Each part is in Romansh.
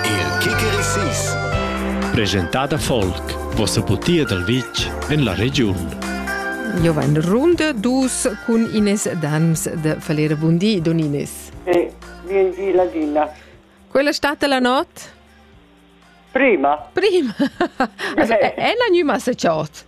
Il Kikerisis Presentada folk Vossa putia dal vitg en la regiun Io va in runda dus cun Ines Dams de Falera Bundi Donines. Sì, vien giu ladina. Quella stata la not? Prima. Prima. also, è la gnuma se ciot?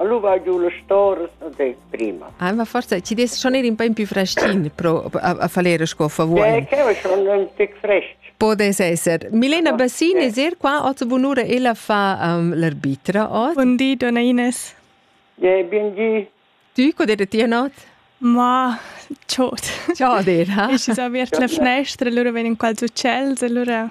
Lu va giu las storas e dei prima. Ah, ma forza, ci des schon ir un po più freschin pro a, a falere sco favuoi. Eh, che va schon un tic fresh. Podes esser. Milena Bassin es er qua oggi bunura ella fa um, l'arbitra oggi. Buon di, donna Ines. Ja, bien di. Tu, co der ti not? Ma ciot. Ciot er, ha? Ich ist auch wirklich fnestr, allora wenn in qual succels, allora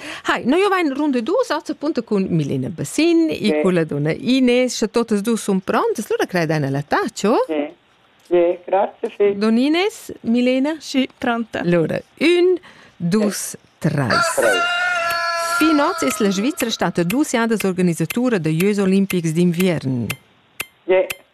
Hai, no io vain runde dus als appunto cun Milena Bassin, sì. i con la donna Ines, sche totes dus sun prontes, lura credeina la tacio? Sì. Sì, grazie, sì. Don Ines, Milena? Sì, pronta. Lura, un, dus, treis. Treis. Fin oz es la Svizzera stata dus jadas organisatura da Jeux Olimpics d'inviern. Sì,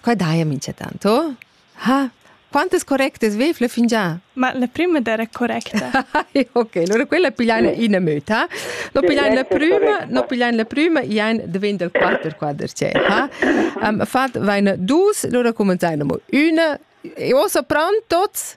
Qua daja minchatant, oh? Ha, quantas correctas vefle fingià? Ma la prima era correcta. ok, allora quella pigliain ina möta, no pigliain la prüma, no pigliain la prüma, iain diventa il quatter quadracet, ha? Um, fat vaina dus, allora cumanzain amo üna, e ossa pran tots?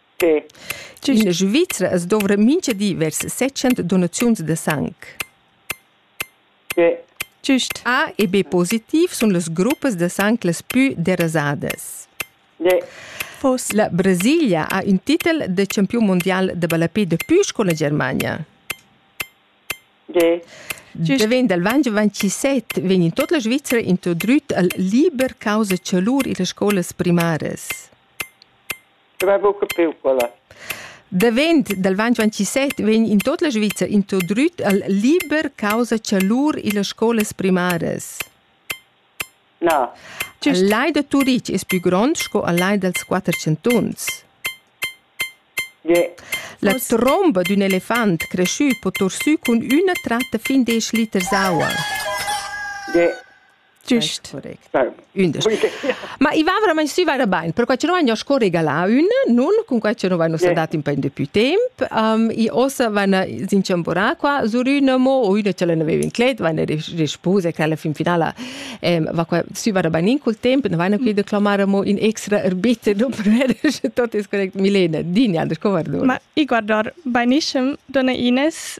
In Svizra as dovra mincha di vers 600 donaziuns da sang. Giust. A e B positiv sun las gruppas da sang las pü derasadas. La Brasilia ha ün titel da champiun mundial da ballapè dapü sco la Germania. Davent dal Vange 27 vegn in tot la Svizra introdüt al liber causa chalur illa scolas primaras. Davent dal ventg ventisett vegn in tot la Svizra introdrüt al liber causa cha lur illas scolas primaras. Na. Il lai da Turitg es pü grond sco al lai dals quatter chantuns. Yeah. La tromba d'ün elefant creschü po torsü cun üna tratta fin desch liters aua. Yeah. Giust. Ündas. Ma i va verament si va bain, perquai che noi sco regalà ün, nun, cun quai che noi nos dat in pin depuis temp. Um, I ossa vana s'inchamborà qua sur üna mo o üna ch'ella n'aveva in clet, vana respose che alla fin finala ehm, va qua si va bain in col temp, ne vana qui de clamare mo in extra erbit non per tot is correct Milena, din Anders, co guardar? Ma i guardar bainissem, donna Ines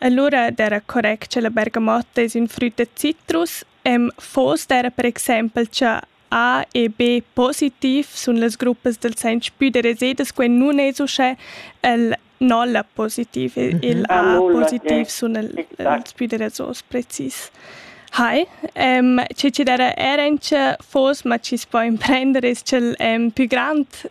E lura d'era correct che la bergamotta es ün früt da citrus e'm fos d'era per exaimpel cha A e B positiv sun las gruppas dal sainz pü da resiedas quai nun es uschè e'l nolla positiv, il A positiv sun els pü da rasos precis. Hai, che chi d'era era in cha fos, ma chi's po imprender es cha'l pü grand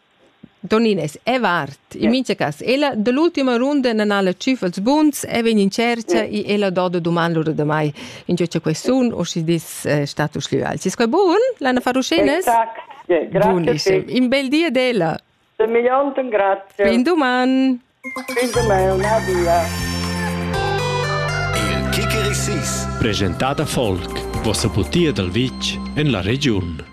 Toniness è vart. In mincha cas, ella da l'ultima runda nan ha la tschüf als buns e vegn in tschercha e ella do da duman lura da mai. Ingio cha quai sun o schi dis eh, status glüal. Sis quai bun? L'Anna Faruschenes? Exact. Yeah, grazie. Buonissimo. In bel di ad ella. De millionten grazie. Fin duman. Fin duman. Adia. Il Kickeri 6. Presentata folk. Vossa butia dal vitg en la regiun.